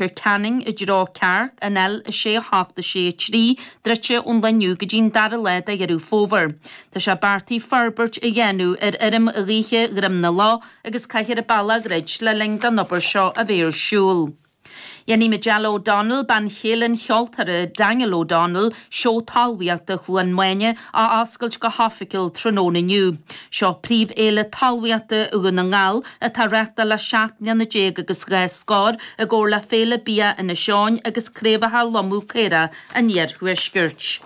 Leitir Ceanainn i dtreo Cearc an L6 7 6 3 druidte ón lá inniu go dtí an dara lá de Dheireadh Fómhair. Tá sé beartaithe forbairt a dhéanamh ar fheirm ghaoithe Dhroim na Lá agus caithfear a bealach a dhruid le linn don obair seo a bheith ar siúl. Dhéanfaidh Majella O'Donnell, bean chéile an cheoltóra Daniel O'Donnell, Seó Talmhaíochta Chluain Maine a oscailt go hoifigiúil tráthnóna inniu. Seo príomhfhéile talmhaíochta Dhún na nGall, atá á reáchtáil le 17 mbliana agus dhá scór, i gcomhar le Féile Bia Inis Eoghain agus Craobhacha Lomadh Caorach an Iarthuaiscirt.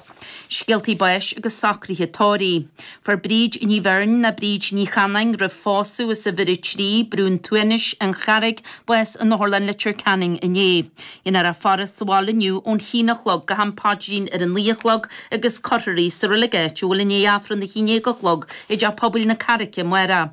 Scéaltaí báis agus socruithe tórraimh. Fuair Bríd Ní Bheirn, nó Bríd Ní Chanáin roimh phósadh, as uimhir 3, Brún Túinéis, An Charraig, bás in Otharlann Leitir Ceanainn inné. Déanfar a faire sa bhaile inniu ón haon a chlog go ham paidrín ar a naoi a chlog agus cuirfear í sa reilig áitiúil i ndiaidh Aifreann a haon déag a chlog i dteach pobail na Carraige amárach.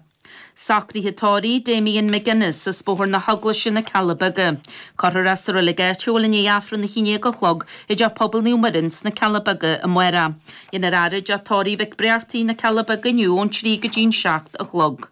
Socruithe tórraimh Damien McGuinness, as Bóthar na hEaglaise na Cealla Beaga. Cuirfear é sa reilig áitiúil i ndiaidh Aifreann a haon déag a chlog i dteach pobail Naomh Muire ins na Cealla Beaga amárach. Déanfar a fhaire i dTeach Tórraimh Mhic Breartaigh na Cealla Beaga inniu ón trí go dtí'n seacht a chlog.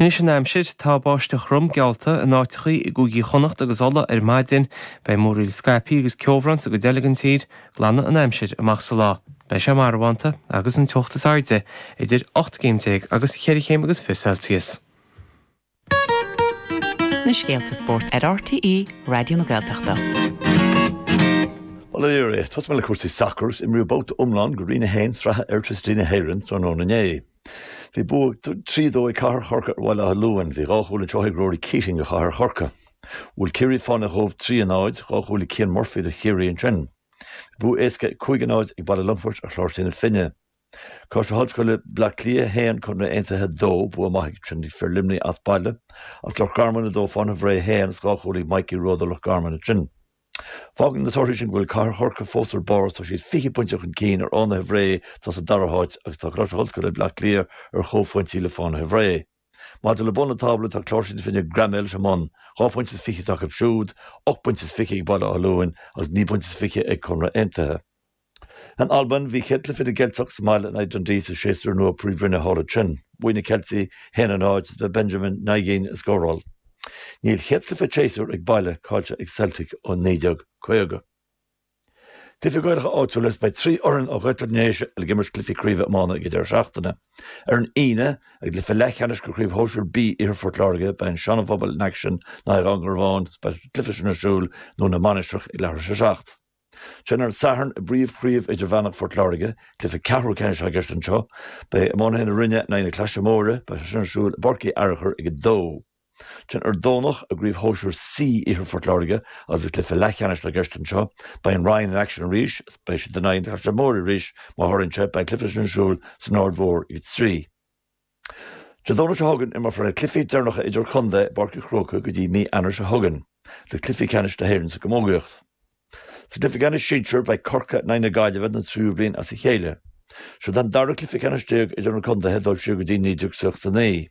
Anois an aimsir, tá báisteach throm geallta in áiteachaí i gCúigí Chonnacht agus Uladh ar maidin. Beidh múraíl scaipthe agus ceobhrán sa gcuid eile den tír. Glanfaidh an aimsir amach sa lá. Beidh sé marbhánta agus an teocht is airde idir ocht gcéim déag agus cheithre chéim agus fiche Celsius. na scéalta spóirt ar RTÉ Raidió na Gaeltachta. Bhuel, a fhir, tosóimid le cúrsaí sacair is imríodh babhta iomlán de Roinn 1 sraithe Airtricity na hÉireann tráthnóna inné. Bhí bua trí dó ag Cathair Chorcaí ar Bhaile Átha Luain. Bhí dhá chúl anseo ag Ruairí Keating do Chathair Chorcaí. Bhuail Ciarraí Fánaithe Chóbh trí a náid, dhá chúl ag Cian Murphy do Chiarraí ansin. Bhí bua éasca cúig a náid ag Baile Longfoirt ar Chláirsigh na Finne. Coláiste na hOllscoile Bleá Cliath 1, Conradh Aontaithe 2, bua maith ag Treaty, fir Luimnigh as baile, is Loch Garman 2 Fánaithe Bhré 1 is dhá chúl ag Mikey Rowe do Loch Garman ansin. Fágann na torthaí sin go bhfuil Cathair Chorcaí fós ar barr is tá siad 20 pointe chun cinn ar Fhánaithe Bhré atá sa dara háit agus tá Coláiste na hOllscoile Bhleá Cliath ar chomhphointí le Fánaithe Bhré. Maidir le bun an tábla, tá Cláirsigh na Finne greamaithe leis an mbun, dhá phointe is fiche atá acu siúd, ocht bpointe is fiche ag Baile Átha Luain agus naoi bpointe is fiche ag Conradh Aontaithe. In Albain, bhí chéad chluiche na gCeilteach sa mbaile in aghaidh Dundee sa séasúr nua Príomhroinne thall ansin. Bhuaigh na Ceiltigh 1-0 is ba é Benjamin Nygren a scóráil. Níl chéad chluiche an tséasúir ag baile caillte ag Celtic ó 1950. Cluichí Gaelacha áitiúil is beidh trí fhoireann ó Ghaeltacht na nDéise ag imirt cluichí craoibhe iomána ag an deireadh seachtaine. Ar an Aoine, i gcluiche leathcheannais de Chraobh Shóisir B Iarthar Phort Láirge, beidh an Seana-Phobal in aicsean in aghaidh Dhún Garbháin, beidh an cluiche sin ar siúl i nDún na Mainistreach ag leathuair tar éis a seacht. Sin ar an Satharn i bPríomh-Chraobh Idirmheánach Phort Láirge. Cluiche ceathrú ceannais atá i gceist anseo. Beidh iománaithe na Rinne in aghaidh na Claise Móire. Beidh sé sin ar siúl i bPáirc Uí Fhearchair ag 2. Ansin ar an Domhnach i gCraobh Shóisir C Iarthar Phort Láirge agus is cluiche leathcheannais atá i gceist anseo. Beidh an Rinn in aicsean arís agus beidh siad in aghaidh na Claise Móire arís. Mar a tharlaíonn sé, beidh an cluiche sin ar siúl san Aird Mhór ag 3. Dé Domhnaigh seo chugainn, imreofar na cluichí deireanacha idir-contae i bPáirc an Chrócaigh go dtí mí Eanáir seo chugainn le cluichí ceannais na hÉireann sa gcamógaíocht. Sa gcluiche ceannais sinsear, beidh Corcaigh in aghaidh na Gaillimhe den tríú bliain as a chéile. Siod an dara cluiche ceannais déag idir na contaetha ag dul siar go dtí 1969.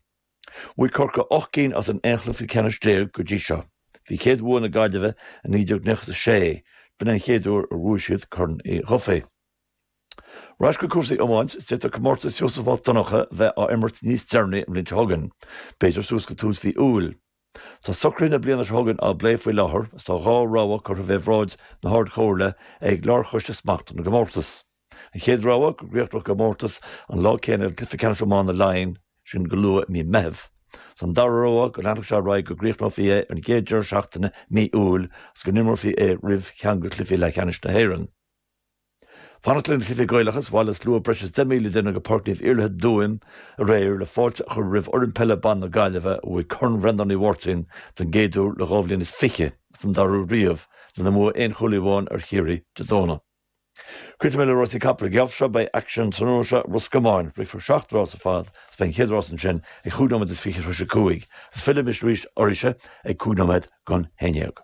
Bhuaigh Corcaigh ocht gcinn as an aon chluiche ceannais déag go dtí seo. Bhí chéad bhua na Gaillimhe i 1996, is b'in é an chéad uair a bhuaigh siad Corn Uí Dhufaigh. Ar ais go cúrsaí iomáint, is d'fhéadfadh comórtas Sheosaimh Mhic Dhonncha bheith á imirt níos deireanaí an bhliain seo chugainn, b'fhéidir suas go tús mhí Iúil. Tá socruithe na bliana seo chugainn á bplé faoi láthair agus tá dhá rogha curtha faoi bhráid na hArd-Chomhairle ag Lárchoiste Smachta na gComórtas. An chéad rogha, go gcríochnódh an comórtas an lá céanna le Cluiche Ceannais Iomána Laighean, sin go luath i mí Meitheamh. Is an dara rogha go leanfadh sé ar aghaidh go gcríochnófaí é ar an gcéad deireadh seachtaine mí Iúil agus go n-imreofaí é roimh cheann de chluichí leathcheannais na hÉireann. Fanacht leis na cluichí Gaelacha is bhailigh slua breis is 10,000 duine go Páirc Naomh Iarlaithe i dTuaim aréir le fáilte a chur roimh fhoireann peile ban na Gaillimhe a bhuaigh Corn Bhreandáin Uí Mháirtín don gcéad uair le dhá bhliain is fiche is don dara riamh lena mbua aon chúilín amháin ar Chiarraí Dé Domhnaigh. Críochnóidh mé le rásaí capall an geábh seo beidh aicsean an tráthnóna seo i Ros Comáin. Rithfear seacht rás ar fad agus beidh an chéad rás ansin ag chúig nóiméad is fiche tar éis a cúig agus fillfidh mise ar ais arís ag cúig nóiméad don haon déag.